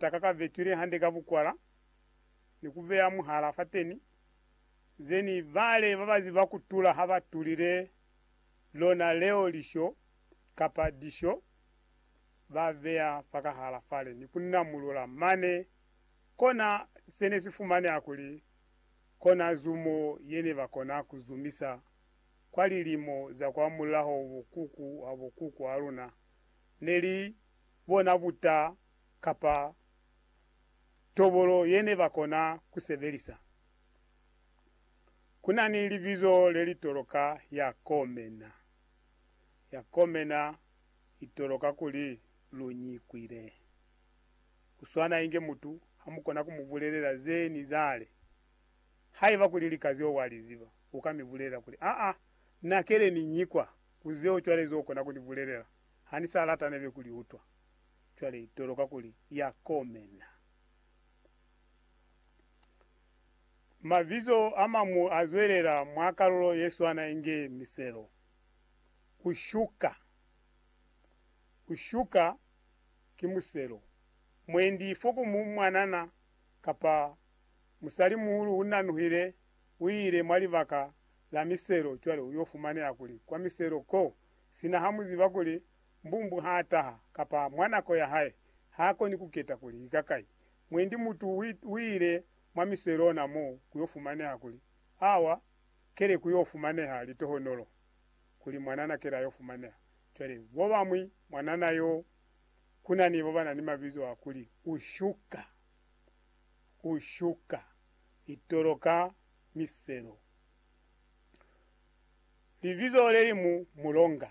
Taka ka vetwile hande ka bukwala ni ku beya muhala fateni, zeni bale ba ba ziba ku tula ha ba tulile lona leo lisho kapa disho ba beya fakahala fale ni ku namulula mane. Kona se ne si fumaneha kuli kona zumo ye ne ba kona ku zumisa kwa lilimo za kwa mulaho bo kuku ha bo kuku ha luna ne li bona buta kapa tobolo yene bakona kusebelisa. Kunani libizo lelitoloka ya komena. Ya komena itoloka kuli lunyikwile. Kuswana inge mutu hamukona kumubulelela ze nizale. Haiba kuli lika zeo waliziba, uka mibulelela kuli, Aa, na kele ninyikwa ku zeo cwale ze ukona kunibulelela. Hanisa lata nebe kuliutwa. Cwale toloka kuli ya komena. Mabizo amañwi azwelela mwa kalulo yeswana inge miselo. Ushuka. Ushuka ki muselo. Mwendi fo ku mu mwanana kapa musalimuhulu unanuhile, uile mwa libaka la miselo cwale uyo fumaneha kuli kwa miselo ko, sina hamuziba kuli Mbumbu ha taha, kapa mwa nako ya hae, ha koni ku keta kuli ki kakai. Mwendi mutu u ile mwa miso ye lona mo ku yo fumaneha kuli, Awa, kele ku yo fumaneha litohonolo, kuli mwanana kele a yo fumaneha. Cwale, bo bamwi, mwanana yo, ku na ni babana ni mabizo a kuli, u shuka, u shuka, litolo ka miselo. Libizo le limu, mulonga.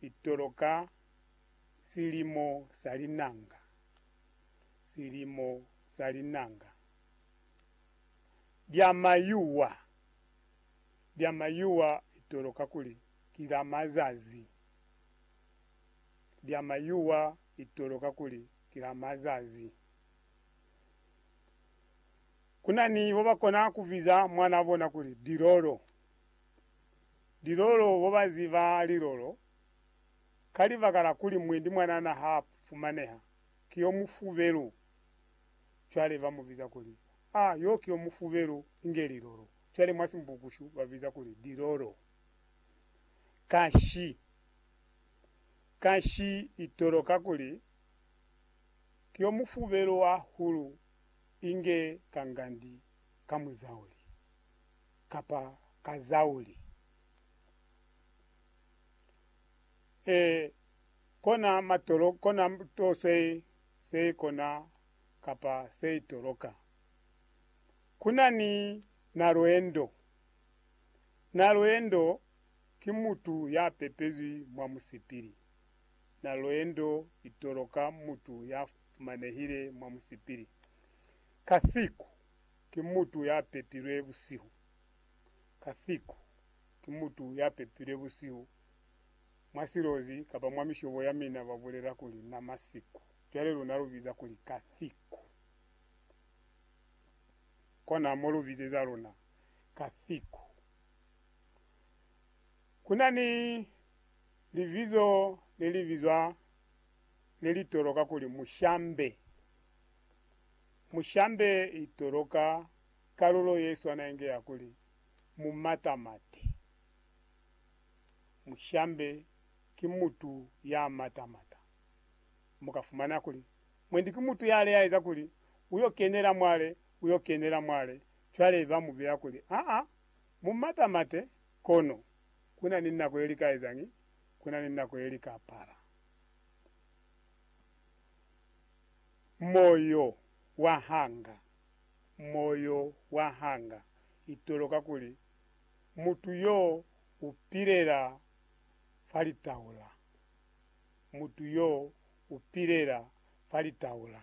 Itolo ka silimo sa linanga, silimo sa linanga lya mayuwa, lya mayuwa itolo kakuli ki la mazazi, lya mayuwa itolo kakuli ki la mazazi. Kuna ni bo ba kona ku biza mwana bona kuli Dilolo. Lilolo bo ba ziba lilolo, ka libaka la kuli mwendi mwanana ha a fumaneha, ki yo mufubelu. Cwale ba mu biza kuli, A, yo ki yo mufubelu, inge lilolo. Cwale mwa Simbukushu ba biza kuli lilolo. Kashi, kashi i toloka kuli ki yo mufubelu hahulu inge kangandi ka muzauli. kapa ka zau li e kona matolo kona to se se kona kapa se itoloka. Kuna ni na lwendo. Na lwendo ki mutu ya pepezwi mwa musipili. Na lwendo itoloka mutu ya fumanehile mwa musipili. Ka thiku. Ki mutu ya pepilwe busihu. Kathiku ki mutu ya pepilwe busihu mwa silozi kapa mwa mishobo ya mina ba bulela kuli na masiku. Cwale luna lu biza kuli Kathiku. Kona mo lu bizeza luna Kathiku. Ku na ni libizo le li bizwa le li toloka kuli Mushambe. Mu shambe itolo ka kalulo ye swana inge ya kuli, Mu matamate. Mu shambe ki mutu ya matamata. Mu ka fumana kuli, Mwendi ki mutu yale ya eza kuli, U yo kenela mwale, u yo kenela mwale. Cwale ba mu beya kuli, Aa, mu matamate, kono ku na ni nako ye li ka ezañi? Ku na ni nako ye li ka pala. Moyo wa hanga, moyo wa hanga itolo kakuli mutu yo u pilela fa litaula, mutu yo u pilela fa litaula.